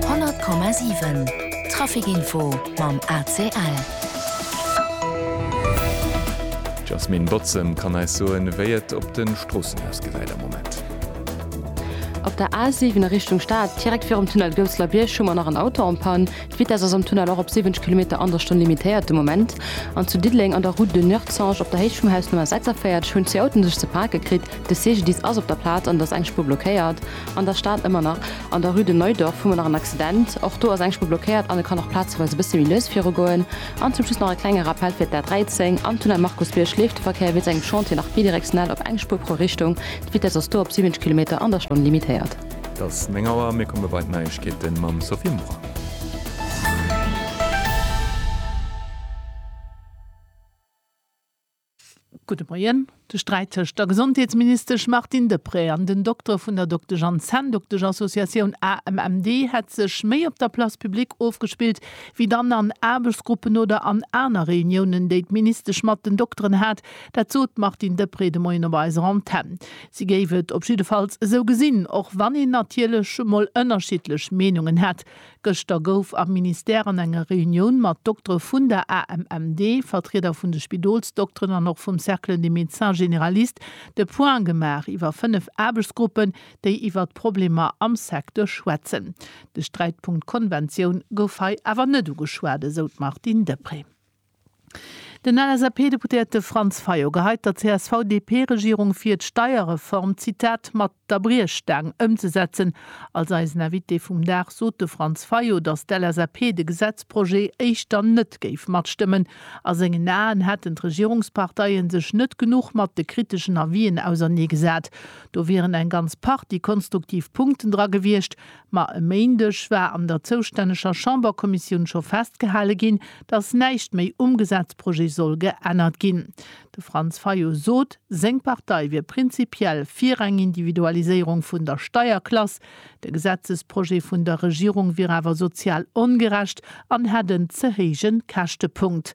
100,7 Trafic Info mam ACL. D'Jasmine Botzem kann eis soen, wéi et op de Stroossen ausgesäit am Moment. Op der A 7 a Richtung Stad, direkt virum Tunnel Goussler Bierg, hu mer nach en Auto en Panne. D'Vitess ass am Tunnel och op 70 Kilometer an der Stonn limitéiert de Moment. An zu Diddeleng an der Route de Nuertzange op der Héicht vum Haus Nummer 46 hunn zwee Autoen sech ze pake kritt. De CGDIS ass op der Plaz an et ass eng Spuer blockéiert. An der Stad ëmmer nach an der Rue de Neudorf hu mer nach en Accident. Och do ass eng Spur blockéiert an et kann och plazeweis e bësse méi lues virugoen. An zum Schluss nach e klenge Rappell fir d'A 13. Am Tunnel Markusbierg leeft de Verkéier wéinst engem Chantier nach bidirektional op eng Spur pro Richtung. D'Vitess ass do op 70 Kilometer an der Stonn limitéiert. Et ass 9 Auer, mir komme bei d'Neiegkeete mam Sophie Mucha. Gudde Moien. De Sträit tëscht der Gesondheetsministesch Martine Deprez an den Doktere vun der Doktesch an Zänndoktesch-Associatioun AMMD hätt sech méi op der Place publique ofgespillt, wéi dann an Aarbechtsgruppen oder an aner Reuniounen, déi d'Ministesch mat den Dokteren hat. Dat sot d'Martine Deprez de Moien op eiser Antenn. Si géif et op jiddefalls esou gesinn, och wann een natierlech emol ënnerschiddlech Meenungen hätt. Gëschter gouf am Ministère an enger Reunioun mat Doktere vun der AMMD, Vertrieder vun de Spidolsdokteren an och vum Cercle des médecins généralistes de Point gemaach iwwer fënnef Aarbechtsgruppen, déi iwwer d'Problemer am Secteur schwätzen. De Sträitpunkt Konventioun gouf hei awer net ugeschwat, esou d'Martine Deprez. Den LSAP-Deputéierte Franz Fayot geheit der CSV-DP-Regierung vir, d'Steierreform, Zitat, mat der Briechstaang ëmzesetzen. Als eisen Invité vum Dag sot de Franz Fayot, datt d'LSAP de Gesetzprojet éischter net géif matstëmmen. A sengen Aen hätten d'Regierungsparteie sech net genuch mat de kriteschen Avisen auserneegesat. Do wieren eng ganz Partie konstruktiv Punkten dra gewiescht, Ma e Méindeg war an der zoustänneger Chamberkommissioun scho festgehale ginn, datt näischt méi um Gesetzprojet soll geännert ginn. De Franz Fayot sot, seng Partei wier prinzipiell fir eng Individualiséierung vun der Steierklass. De Gesetzesprojet vun der Regierung wier awer sozial ongerecht an hätt en ze héije Käschtepunkt.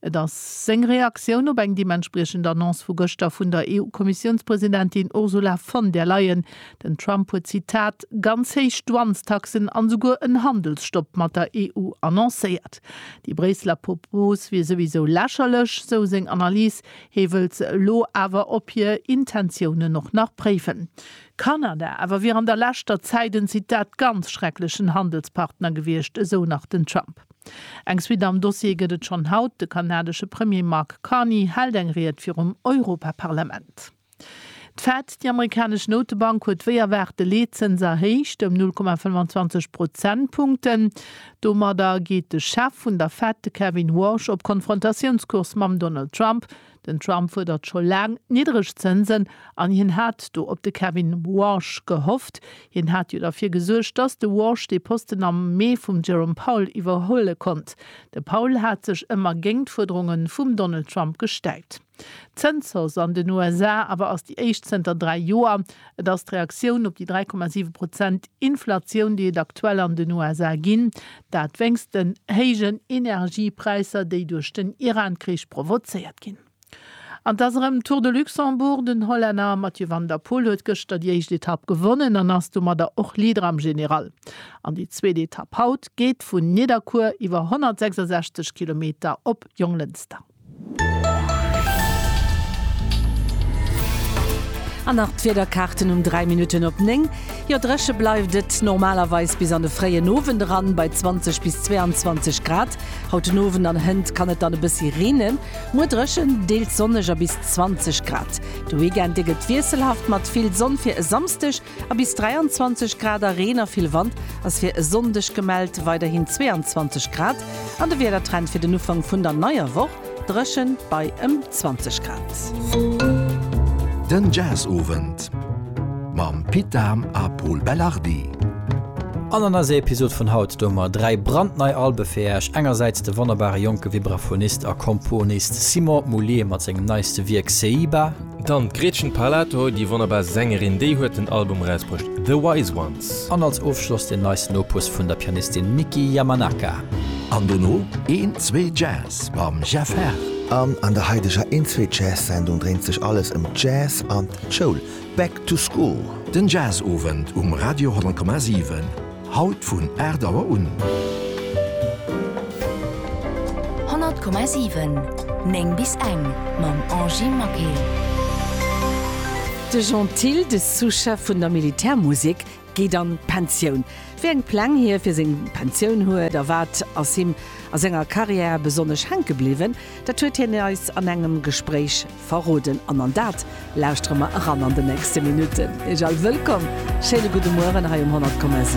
Et ass seng Reaktioun op eng deementspriechend Annonce vu gëschter vun der EU-Kommissiounspresidentin Ursula von der Leyen. Den Trump huet, Zitat, ganz héich Douanestaxen an esouguer en Handelsstopp mat der EU annoncéiert. Déi Bréisseler Propos wier souwisou lächerlech, sou seng Analys. Hie wëllt se elo awer op hir Intentiounen och nach préiwen. Kanada awer wier an der leschter Zäit en, Zitat, ganz schrecklechen Handelspartner gewiescht, esou nach den Trump. Eng Suite am Dossier gëtt et schonn haut, De kanadesche Premier Mark Carney hält eng Ried virum Europaparlament. D'Fed, déi amerikanesch Noutebank, huet wéi erwaart de Leetzëns erhéicht ëm 0,25 Prozentpunkten. Domadder geet de Chef vun der Fed, de Kevin Warsh, op Konfrontatiounskurs mam Donald Trump, Den Trump fuerdert scho laang niddreg Zënsen an hien hat do op de Kevin Warsh gehofft. Hien hat jo derfir gesuergt, datt de Warsh dee Posten am Mee vum Jerome Powell iwwerhuele konnt. De Powell hat sech ëmmer géint d'Fuerderunge vum Donald Trump gestäipt. D'Zënshausse an den USA awer ass déi éischt zënter dräi Joer. Et ass d'Reaktioun op déi 3,7 Prozent Inflatioun, déi et aktuell an den USA ginn, dat wéinst den héijen Energiepräisser, déi duerch den Iran-Krich provozéiert ginn. An et ass erëm Tour de Luxembourg, Den Hollänner Mathieu van der Poel huet gëschter déi éischt Etapp gewonnen an ass domadder och Leader am General. An déi zweet Etapp haut geet vun Nidderkuer iwwer 166 Kilometer op Jonglënster. An nach d'Wiederkaarten um 3 Minutten op 9. Jo, dréche bleift et normalerweis bis an de fréien Owend eran bei 20 bis 22 Grad. Haut den Owend an hënt kann et dann e bëssi reenen. Muer dréchen, deels sonneg a bis 20 Grad. De Weekend, dee gëtt wiesselhaft mat vill Sonn fir e Samsdeg. A bis 23 Grad a Reen a vill Wand ass fir e Sonndeg gemellt, weiderhin 22 Grad. An de Wiedertrend fir den Ufank vun der neier Woch, Dréchen bei ëm 20 Grad. Den Jazzowend mam Pit Dahm a Pol Belardi. An an eiser Episod vun haut doe mer 3 brandnei Albe fir Äech, engersäits de wonnerbare jonke Vibraphonist a Komponist Simon Moullier mat sengem neiste Wierk Seiba, Dann d'Gretchen Parlato, déi wonnerbar Sängerin, déi huet den Album erausbruecht The Wise Ones. An als Ofschloss den neisten Opus vun der Pianistin Miki Yamanaka. An dono een zwee Jazz mam Jeff Herr. An an der haideger een zwee Jazz Sendung dréint sech alles ëm d'Jazz an d'Schoul, Back to School. Den Jazz Owend um Radio 10,7. Haut vun 8 Auer un. 100,7, 9 bis eng mam Angie Maquet. De Jean Thill, de Sous-Chef vun der Militärmusek, geet an d'Pensioun. Wéi eng Pläng hie fir seng Pensioun huet a wat ass him a senger Karriär besonnesch hänke bliwwen, dat huet hien eis an engem Gespréich verroden. An an dat lauschtere mer eran an den nächste Minutten. Ech all wëllkomm, schéine gudde Mueren hei um 100,7.